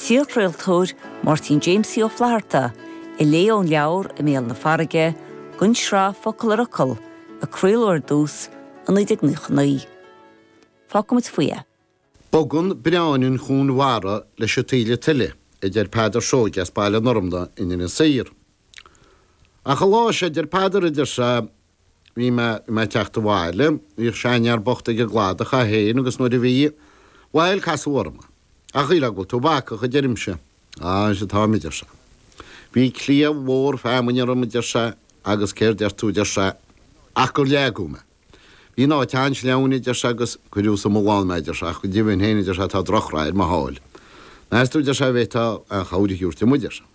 t-iarchraoltóir Máirtín Jamesie Ó Flaithearta a léigh ón leabhar I mBéal na Farraige don tsraith Focal ar Fhocal a craoladh ar dtús i 1999. Fágfaidh muid faoi é. Bogann breán an chuain mhara leis an taoille tuile, a deir Peadar Seoige as Baile an Fhormna in Inis Oírr. Ach an lá seo, a deir Peadar, idir Bhí mé i mo theacht abhaile. Bhí seanfhear bocht ag an gcladach, é féin agus nuair a bhí, bhail, casadh orm é. A Choileáin, bhfuil tú bacach, a deirimse. Á, arsa, táim, a deir sé. Bhí cliabh mhór feamainne orm, a deir sé, agus céard deir tú, a deir sé, ach gur leagadh mé. Bhí an áit an-sleamhain, a deir sé, agus cuireadh sa mbullán mé, a deir sé, ach go deimhin féin, a deir sé, tá drochrath ar mo sháil. Meas tú, a deir sé, a bhféadfá aon chabhair a thabhairt dom, a deir sé.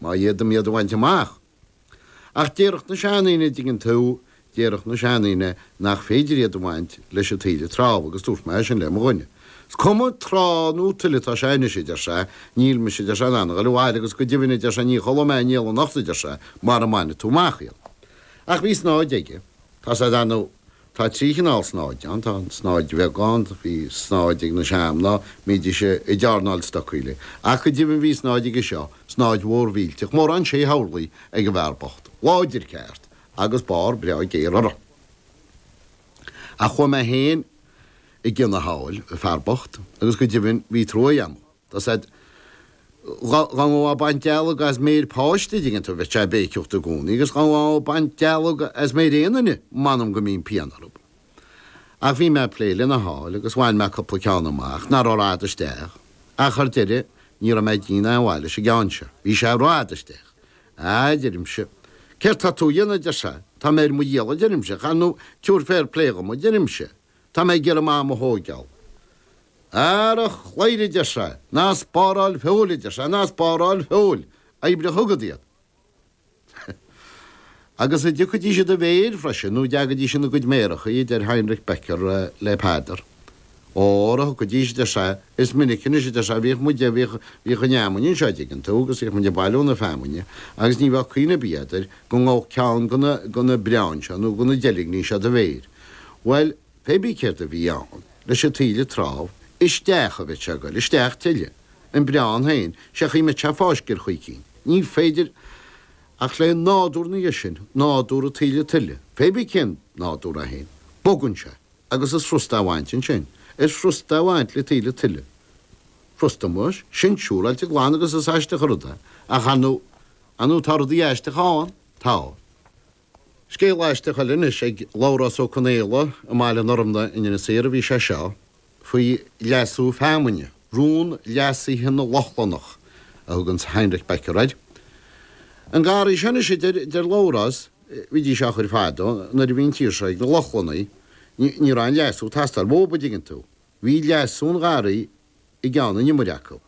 má fhéadaim iad a bhaint amach. Ach déarfadh na seandaoine, a dtuigeann tú, déarfadh na seandaoine nach féidir iad a bhaint leis an taoille trámh agus dúirt mé é sin le mo dhuine. Is cuma trá nó tuile atá sé anois, a deir sé, níl mise, a deir sé, in ann a ghoil abhaile agus go deimhin, a deir sé, ní chodlóidh mé néal anocht, a deir sé, mara mbaine tú amach iad. Ach bhí snáthaid aige, tá a fhios agat ann. Tá trí chineál snáthaide ann. Tá an tsnáthaid bheag ann, bhí snáthaid ag na seanmhná a mbídís ag dearnáil stocaí léi. Ach go deimhin bhí snáthaid aige seo, snáthaid mhór mhillteach, mórán sé horlaí ag an bhfear bocht, láidir ceart, agus barr breá géar uirthi. Ach chuaigh mé féin i gcionn a sháil, an fear bocht, agus go deimhin bhí truaigh agam dó Tá a fhios agat dá ngabhfá ag baint dealg as méir páiste an dtuigeann tú bheadh sé ag béiceacht i gcomhnaí agus dá ngabhfá ag baint dealg as méir aon duine m'anam go mbíonn pian orthab. Ach bhí mé ag plé lena sháil agus bhain mé cupla ceann amach nach raibh rófhada isteach ach ar deireadh ní raibh mé ag déanamh aon mhaith leis an gceann seo. Bhí sé rófhada isteach. A deirimse Céard tá tú a dhéanamh adeir sé. Tá mé ar mo dhícheall a deirimse, ach tabhair féar plé dhom a deirimse. Tá mé ag iarraidh m'am a thóigeáil. Ara, a chladhaire, a deir sé, ná spáráil feoil, a deir sé, ná spáráil feoil, oibrigh chugat é. Agus an dtiocfaidís i do mhéir freisin, nó an dtagaidís ina gcuid méarachaí, a deir Heinrich Becker le Peadar. Óra thiocfaidís, a deir sé, is minic anois, a deir sé, bhíodh muide, bhíodh, bhíodh an fheamainn anseo, a dtuigeann tú, agus bhíodh muid ag bailiú na feamainne, agus ní bheadh cuimhne ar bith agat air go ngabhfadh ceann de na, de na breáin seo nó de na deilgní seo i do mhéir. Bhail, pé bith céard a bhí ann leis an taoille trámh isteach a bheith ag goil isteach tuilleadh, an breán féin, sé an chaoi a mbeadh sé fáiscthe ar chaoi eicínt. Ní féidir ach le nádúr ina dhiaidh sin, nádúr an taoille tuile, pé bith cén nádúr é féin, bogann sé agus is frusta a bhaint ansin, is frusta a bhaint le taoille tuile. Frusta muis, sin siúráilte glan agus is aisteach an rud é, ach, a, nó tá rudaí aisteacha ann, tá. Scéal aisteach eile anois ag Labhrás Ó Conaola i mBaile an Fhormna in Inis Oírr a bhí sé seo, faoi leasú feamainne, rún leasaithe na Lochlannach, a thugann Heinrich Becker air. An garraí seo anois, a deir Labhrás, bhídís á chur fadó, nuair a bhí an tír seo ag na Lochlannaigh. Ní raibh aon leasú ag teastáil uathub, an dtuigeann tú. Bhí leasú an gharraí i gceann an iomaire acu,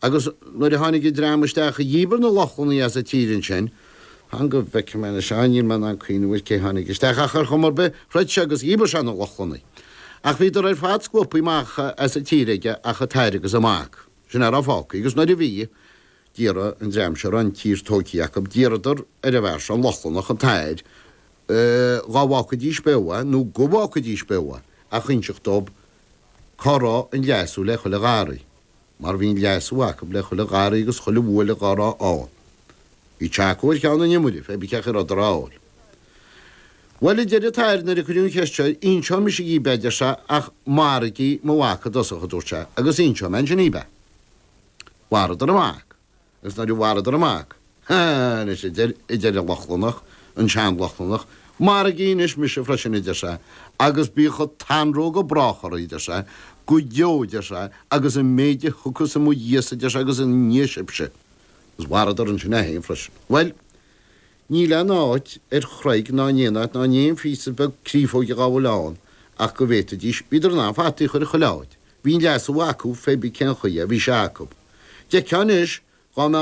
agus nuair a tháinig an dream isteach a dhíbir na Lochlannaigh as an tír ansin, fan go bhfeicfidh mé anois ann, níl mé in ann cuimhneamh ar cé tháinig isteach, ach ar chuma ar bith, throid sé agus dhíbir sé na Lochlannaigh. Ach bhíodar ar fad scuabtha amach as an tír aige ach an t-athair agus an mac, sin a raibh fágtha, agus nuair a bhí, d'iarr an dream seo a raibh an tír tógtha acu, d'iarradar ar an bhfear seo, an Lochlannach, an t-athair, dhá bhfágfaidís beo é nó go bhfágfaidís beo é ach inseacht dóibh cá raibh an leasú le chuile gharraí, mar bhí an leasú acu le chuile gharraí agus chuile bhuaile dhá raibh ann. Bhí sé acu ar cheann an iomaire, feibí cén rud a raibh ann. Bhuel, a deir an t-athair nuair a cuireadh an cheist seo, inseoidh mise dhíbh é, a deir sé, ach maraígí mo mhac i dtosach, a dúirt sé, agus inseoidh mé ansin dhíbh é. Mharaíodar an mac. Is nuair a mharaíodar an mac, ha, anois a deir, a deir an Lochlannach, an sean-Lochlannach, Maraígí anois mise freisin, a deir sé, agus bíodh an t-anró go brách oraibh, a deir sé, go deo, a deir sé, agus an méid a thiocfas i mo dhiaidh-sa, a deir sé, agus i ndiaidh sibhse. Is mharaíodar ansin é féin freisin. Bhuel, Níl aon áit ar chreig ná in aon áit ná in aon phíosa beag criafóige dhá bhfuil ann ach go bhféadfaidís, bhíodar in ann fataí a chur chuile áit, bhí an leasú acu feibí cén chaoi a bhí sé acu. D'fheicfeá anois, dhá mbeadh